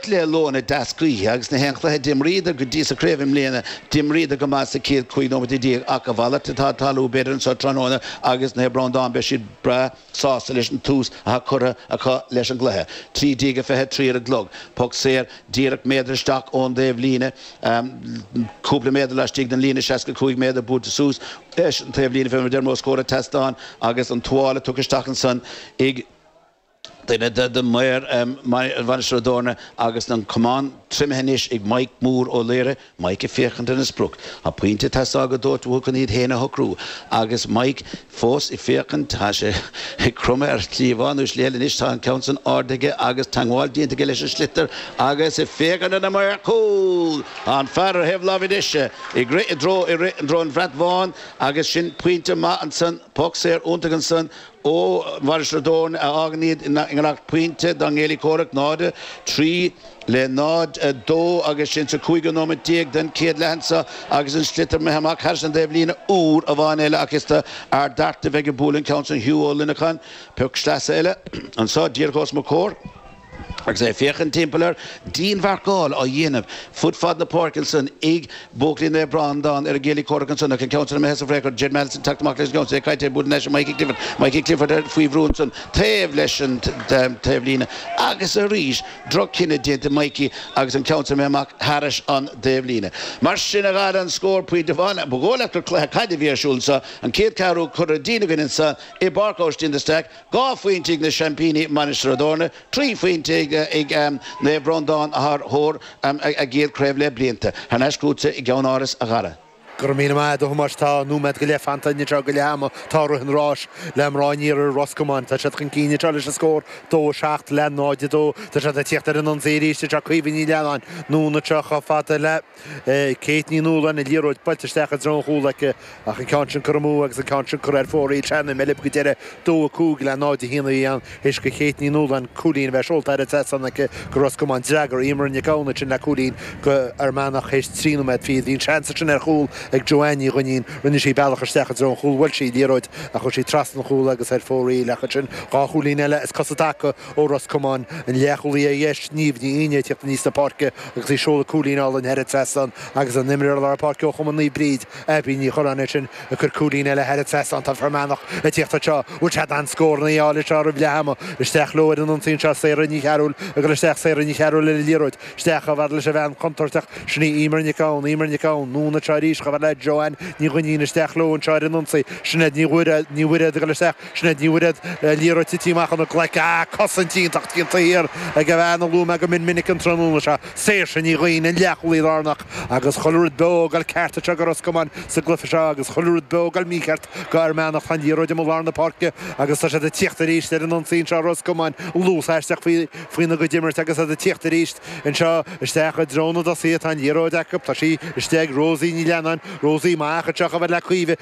cluiche luath na deasgaoithe agus na haon chluiche a d'imríodar go dtí sa craobh i mbliana, d'imríodar go maith sa chéad 15 nóiméad ach a mhalairt atá ag tarlú b'fhéidir anseo tráthnóna agus Naomh Breandán beidh siad breá sásta leis an tús atá curtha acu leis an gcluiche. 13:23 ar an gclog. Poc saor díreach méadar isteach ón dtaobh líne, cúpla méadar laistigh den líne, 65 méadar buailte suas leis an taobh líne fé mar a deirim, os comhair an tseastáin agus an tuáille tugtha isteach ansan ag. Duine de mhaoir Mhainistir Ó dTorna agus an camán triomaithe anois ag Maidhc Mór Ó Laoghaire, Maidhc ag féachaint ar an sprioc. Tá pointe ag teastáil go dóite chun iad féin a shocrú agus Maidhc fós ag féachaint. Tá sé ag cromadh ar shlí amháin nó slí eile anois, tá an ceann san ardaithe aige agus teangmháil déanta aige leis an sliotar agus ag féachaint ar na maoir chúil. Tá an fear ar thaobh láimhe deise ag rith i dtreo ag rith i dtreo an bhrat bháin agus sin pointe maith ansan. Poc saor iontach ansan. Ó Mhainistir Ó dTorna a fhágann iad i ngiorracht pointe dá gcéilí comhraic, 0, 3 le 0, 2, agus sin sa cúigiú nóimeat déag den chéad leath anso agus an sliotar imithe amach thairis an dtaobh líne. Uair amháin eile ach is do Ard Fhearta a bheidh ag bualadh an ceann sin Hugh Ó Luineacháin. Poc sleasa eile anso díreach ós mo comhair. Agus é ag féachaint timpeall air, dianmharcáil á dhéanamh fud fad na páirce ansan, ag buachaillí Naomh Breandán ar a gcéilí comhraic ansan, ach an ceann san imithe San Fréachard, Jed Maunsell ag teacht amach leis an gceann san, é caite ag bualadh in aice Mikey Clifford, Mikey Clifford ar faoi bhrú ansan taobh leis an taobh líne agus arís droch cinneadh déanta ag Mikey agus an ceann san imithe amach thairis an dtaobh líne. Mar sin a ghalar an scór pointe amháin. Ba dhóigh leat gur cluiche caide a bhí ar siúl anso, an céad ceathrú curtha dínn againn anso i bPáirc Aibhistín de Staic, Dhá phointe ag na seaimpíní Mainistir Ó dTorna, trí phointe ag Naomh Breandán atá ar thóir a gcéad craobh le blianta, thar n-ais chugatsa i gceannáras a Gharry. Go raibh míle maith agat a Thomáis. Tá nóiméad go leith fanta idir seo go leath ama. Tá rith an ráis le mná an iarthair, Ros Comáin. Tá siad chun cinn anseo leis an scór dó, seacht le 0, 2. Tá siad ag tíocht ar an ionsaí arís anseo. Caoimhe Ní Leannáin, anonn anseo chomh fada le. Kate Ní Nualláin, an liathróid buailte isteach i dtreo an chúl aici ach an ceann sin curtha amú agus an ceann sin curtha ar fóraoil. Is é an Meilev go deireadh, 2-5 le 0-1 a bhí ann agus Kate Ní Nualláin cúilín a bheith seolta thar an trasnán aici go Ros Comáin. D'fhreagair Eimear Nic Gabhann ansin le cúilín go Fhear Manach théis trí nóiméad fichead. Bhí an seans ansin ar chúl ag Joanne Ní Dhuinnín. Rinne sí a bealach isteach i dtreo an chúl bhuail sí liathróid ach chuir sí trasna an chúl agus ar fóraoil ach ansin dhá chúilín eile as cosa i dtaca Ó Ros Comáin, an leathchúlaí ar dheis, Niamh Ní Fhidhne ag tíocht aníos na páirce agus í ag seoladh cúilín álainn thar an trasnán agus an imreoir lár páirce ó chumann Naomh Bríd, Abby Ní Churráin ansin ag cur cúilín eile thar an trasnán Tá Fear Manach ag tíocht anseo, bhfuil siad in ann scór a fháil anseo roimh leath ama, isteach leo ar an ionsaí anseo Sarah Ní Chearúil ag dul isteach Sarah Ní Chearúil ar an liathróid, isteach chomh fhad leis an bhean contúirteach, sin í Eimear Nic Gabhann Eimear Nic Gabhann, anonn anseo arís chomh fhad le Joanne Ní Dhuinnín, isteach leo anseo ar an ionsaí Sinéad Ní Bhairéad ag dul isteach. Sinéad Ní Bhairéad, an liathróid titithe amach óna glaic. Ah, cosaint iontach an athuair ag a bhean a luaigh mé go mion minic an tráthnóna seo, Saoirse Ní Ghaoithín, an leathchúlaí lárnach. Agus chuile rud beo ag goil ceart anseo do Ros Comáin sa gcluiche seo agus chuile rud beo ag goil mícheart do Fhear Manach. Tá an liathróid amuigh lár na páirce agus tá siad ag tíocht arís ar an ionsaí anseo Ros Comáin. Luas aisteach faoina gcuid imirt agus iad ag tíocht arís anseo isteach i dtreo na dtosaithe. Tá an liathróid acu. Tá sí istigh ag Rosie Ní Leannáin. Rosie amach anseo chomh fada le Caoimhe.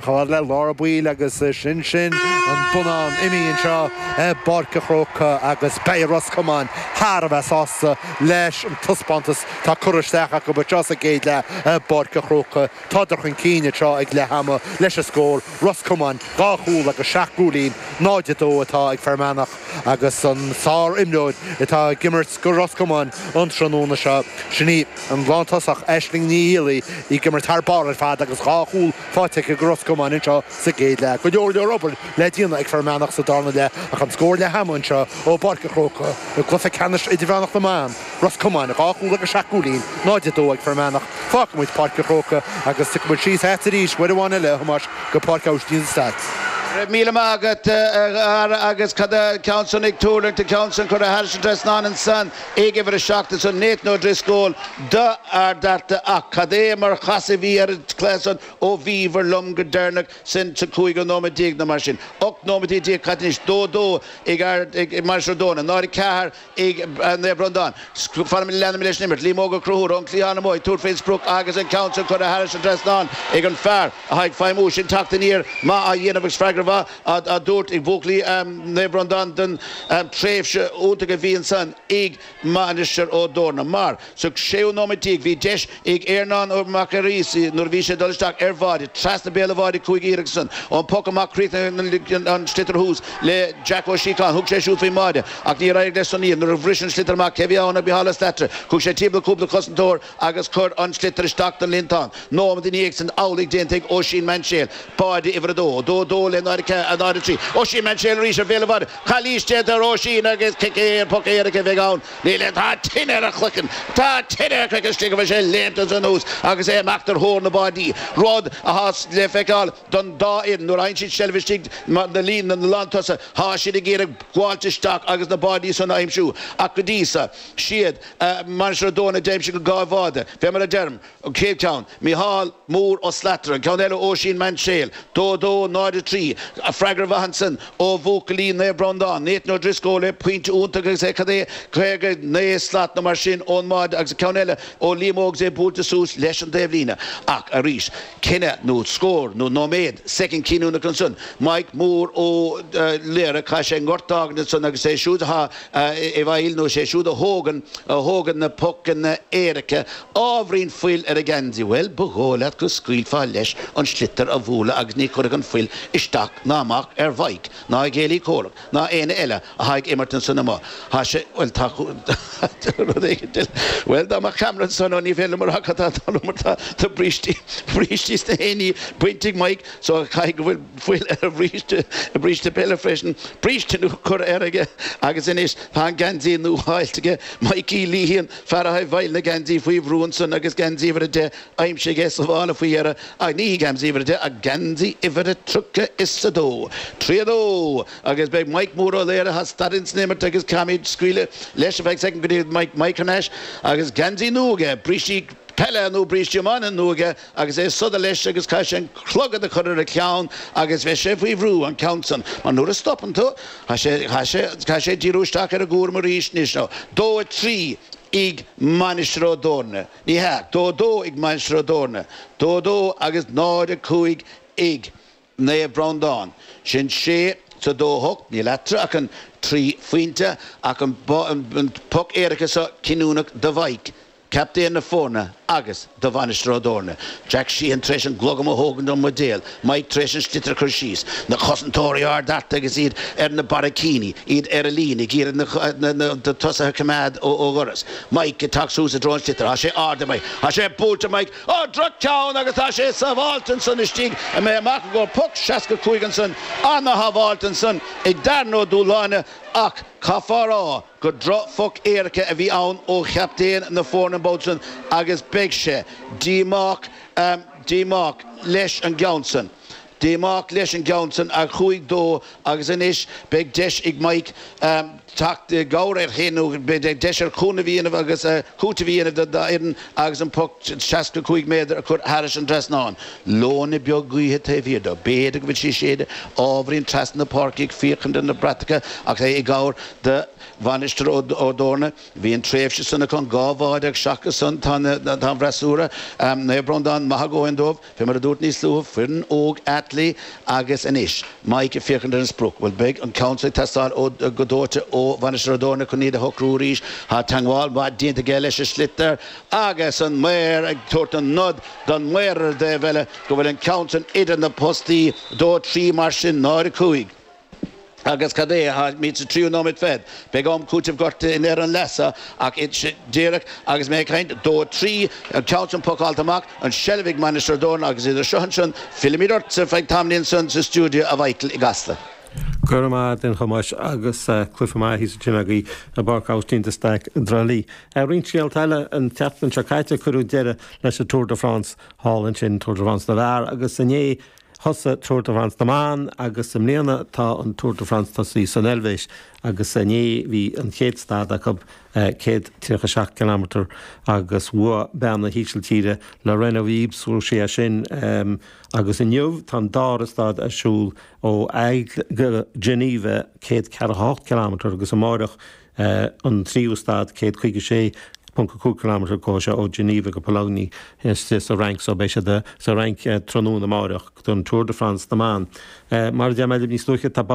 Chomh fada le Laura. Bhuel agus sin sin an bonnán imithe anseo i bPáirc an Chrócaigh agus beidh Ros Comáin thar a bheith sásta leis an taispeántas atá curtha isteach acu anseo sa gcéad leath i bPáirc an Chrócaigh. Tádar chun cinn anseo ag leath ama leis an scór, Ros Comáin dhá chúl agus seacht gcúilín, 0-2 atá ag Fear Manach. agus an sárimreoir atá ag imirt do Ros Comáin an tráthnóna seo, sin í an lántosach Aisling Ní Fhicheallaigh, í ag imirt thar barr ar fad agus dhá chúl faighte aici do Ros Comáin anseo sa gcéad leath. Go leor leor obair le déanamh ag Fear Manach sa darna leath ach an scór leath ama anseo ó bPáirc a' Chrócaigh i gcluiche ceannais idirmheánach na mban, Ros Comáin, dhá chúl agus seacht gcúilín, 0-2 ag Fear Manach. Fágfaidh muid Páirc a' Chrócaigh agus tiocfaidh muid síos agat arís uair amháin eile, a Thomáis, go Páirc Austin Stack. Go raibh míle maith agat, a chara, agus cad é an ceann san ag tuirlingt, an ceann san curtha thairis an trasnán ansan ag uimhir a seacht ansan, Nathan O'Driscoll do Ard Fhearta ach cad é mar chasadh a bhí ar an gcluiche san ó bhíobhair liom go deireanach, sin sa cúigiú nóiméad déag nó mar sin, ochtú nóiméad déag, cad é anois, dó dó ag Mainistir Ó dTorna, 0-4. ag Naomh Breandán. Leanaimid leis an imirt, Liam Óg Ó Conchúir ón gcliathán amuigh ag tabhairt fén sprioc agus an ceann sin curtha thairis an trasnán ag an fear atá ag feidhmiú sin teacht aniar maith á dhéanamh agus freagra mhaith á dtabhairt ag buachaillí Naomh Breandán don tréimhse iontach a bhí ansan ag Mainistir Ó dTorna. Mar. Sa 6ú nóiméad déag bhí deis ag Earnán Mac Fhearghuis nuair a bhí sé ag dul isteach ar bháide, trasna béal an bháide a chuaigh an iarracht san. Ón bpoc amach chríochnaigh an sliotar thuas le Jack Ó Síocháin. Thug sé siúd faoi bháide ach níor éirigh leis san iarracht. Nuair a bhris an sliotar amach cé bhí ann ach Micheál Ó Slatara thug sé timpeall cúpla cosantóir agus chuir an sliotar isteach don líontán. Nóiméad ina dhiaidh san amhlaidh déanta ag Oisín Mainséil, báide uimhir a 2, 2-2 le 0-4, 0-3. Oisín Mainséil arís ar bhéal an bháide. Calaois déanta ar Oisín agus poc éirice a bheidh ann. Níl aon Tá tine ar a chraiceann. Tá tine ar a chraiceann istigh a bhfuil sé léimte anuas agus é ag imeacht ar thóir na báidí, rud athá le feiceáil don dá fhoireann. Nuair fhaghann siad seilbh istigh i líne na lántosaithe thá siad ag iarraidh gabháilt isteach agus na báidí san a aimsiú ach go dtí seo is iad Mainistir Ó dTorna a d'aimsigh an dá bháide. Fé mar a deirim. An chéad ceann, Micheál, Mór, Ó Slatraigh. An ceann eile, Oisín, Mainséil, 2, 2, 0, 3. An freagra ansin ó bhuachaillí Naomh Bhreandán, Nathan O'Driscoll, le pointe iontach agus é cad é 59 slat nó mar sin ón mbáide agus an ceann eile ó Liam Óg is é buailte suas leis an dtaobhlíne. Ach arís, cinneadh nó scór nó nóiméad, soicind cinniúnach ansin. Maidhc, Mór, Ó Laoghaire, caithfidh sé an gort d'fhágaint ansan agus é siúd atá i bhfeighil nó is é siúd a thógann, a thógann na pocanna éirice Ábhairín fuil ar a gheansaí, bhuel, ba dhóigh leat go scaoilfeá leis an sliotar a bhualadh agus ní chuirfeadh an fuil isteach ná amach ar Mhaidhc, ná a chéile comhraic, ná éinne eile atá ag imirt ansan amuigh. Tá sé, bhuel, tá rud éigint eile, bhuel, dá mbeadh ceamara ansan, ó, ní féidir liom a rá cad tá ann, mar tá brístí, brístí is gach aon ní bainte ag Maidhc so caithfidh go bhfuil fuil ar a bhríste, a bhríste peile freisin, bríste nua curtha air aige agus anois tá an geansaí nua fáilte aige, Maidhcí Liathain. Fear a shábháil na geansaí faoi bhrú ansan agus geansaí uimhir a deich aimsithe aige sa mhála faoi dheireadh ach ní hé geansaí uimhir a deich ach geansaí uimhir a tríocha is a dó. Trí a dó! Agus beidh Mike Mór Ó Laoire thá stad ins an imirt agus caithfimid scaoileadh leis ar feadh soicind go dtí go mbeidh Mike thar n-ais agus geansaí nua aige, brístí peile nó brístí iomána nua aige. agus é siúd leis agus caithfidh sé an clogad a chur ar a cheann agus beidh sé faoi bhrú, an ceann san, mar nuair a stopann tú caithfidh sé, caithfidh sé, caithfidh sé díriú isteach ar an gcúram arís anois nó dó a trí ag Mainistir Ó dTorna, ní hea, dó a dó ag Mainistir Ó dTorna, dó a dó agus náid a cúig ag. Naomh Breandán. Sin sé is a dó, a hocht, níl eatarthu ach an trí phointe, ach an poc éirice seo cinniúnach do Mhaidhc, captaen na foirne agus do Mhainistir Ó dTorna. Jack Sheehan tar éis an glogam a thógaint ón mbuidéal, Maidhc tar éis an sliotar a chur síos, na cosantóirí ard thart agus iad ar na barraicíní, iad ar an líne, ag iarraidh na tosaithe a choimeád ó dhoras. Maidhc ag teacht suas i dtreo an sliotar. Tá sé ardaithe ag Maidhc, tá sé buailte! Ó, droch-cheann agus tá sé sábháilte annsan istigh imithe amach i gcóir poc 65 annsan ana-shábháil annsan ag Darren Ó Dúláine ach caithfeá rá gur droch-phoc éirice a bhí ann ó chaptaen na foirne an babhta san agus beidh sé díomách, díomách leis an gceann san. Díomách leis an gceann san a chuaidh dó agus anois beidh deis ag Mike teacht i gcabhair air féin nó beidh deis air cúnamh a dhéanamh agus cúiteamh a dhéanamh dá fhoireann agus an poc seasca cúig méadar a chur thairis an dtrasnán. Leoithne beag gaoithe taobh thiar dó. B'fhéidir go bhfuil sí ag séideadh ábhairín trasna na páirce ag féachaint ar na bratacha ach é i gcabhair do Mhainistir Ó dTorna. Bhí an tréimhse san acu, an dá bháide, ach seachas san tá an freasúra, Naomh Breandán, maith a dhóthain dóibh. Bhí, mar a dúirt níos luaithe, foireann óg aclaí agus anois Mike ag féachaint ar an sprioc. Bhuel, beidh an ceann seo ag teastáil ó, go dóite, ó Mhainistir Ó dTorna chun iad a shocrú arís. Tá teagmháil mhaith déanta aige leis an sliotar agus an maor ag tabhairt an nod don maor ar an dtaobh eile go bhfuil an ceann sin idir na postaí dó trí mar sin náid a cúig. Agus cad é táimid sa tríú nóiméad fichead? Beidh am cúiteamh gorta in éineacht leis sin ach díreach agus mé ag caint. Dó trí an ceann sin pocáilte amach, an seilbh ag Mainistir Ó dTorna agus idir seo agus sin, fillfimid ortsa ar feadh tamaillín ansin sa stiúideo a Mhichael i gCasla. Go raibh maith agat a Thomáis agus cluinfeam aithí sa tine agaibh i bPáirc Austin de Staic i dTrá Lí. Roinnt scéalta eile, an tseachtain seo caite cuireadh deireadh leis an Tour de France thall ansin, Tour de France na bhfear, agus inné, Thosaigh Tour de France na mBan agus i mbliana tá an Tour de France tosaithe san Eilvéis agus inné bhí an chéad stad acu, 137 cileámeatar agus bhuaigh bean na hÍsiltíre, Lorena Wiebes, bhuaigh sí é sin agus inniu tá an dara stad ar siúl ó Aigle go Geneva, 148 cileámeatar agus amáireach é an tríú stad, 156.5 kilometre go, seo, ó Geneva go Poligny, istigh sa Fhrainc so, beidh siad sa Fhrainc tráthnóna amárach don Tour de France na mBan. Mar a deir mé libh níos luaithe, tá babhta.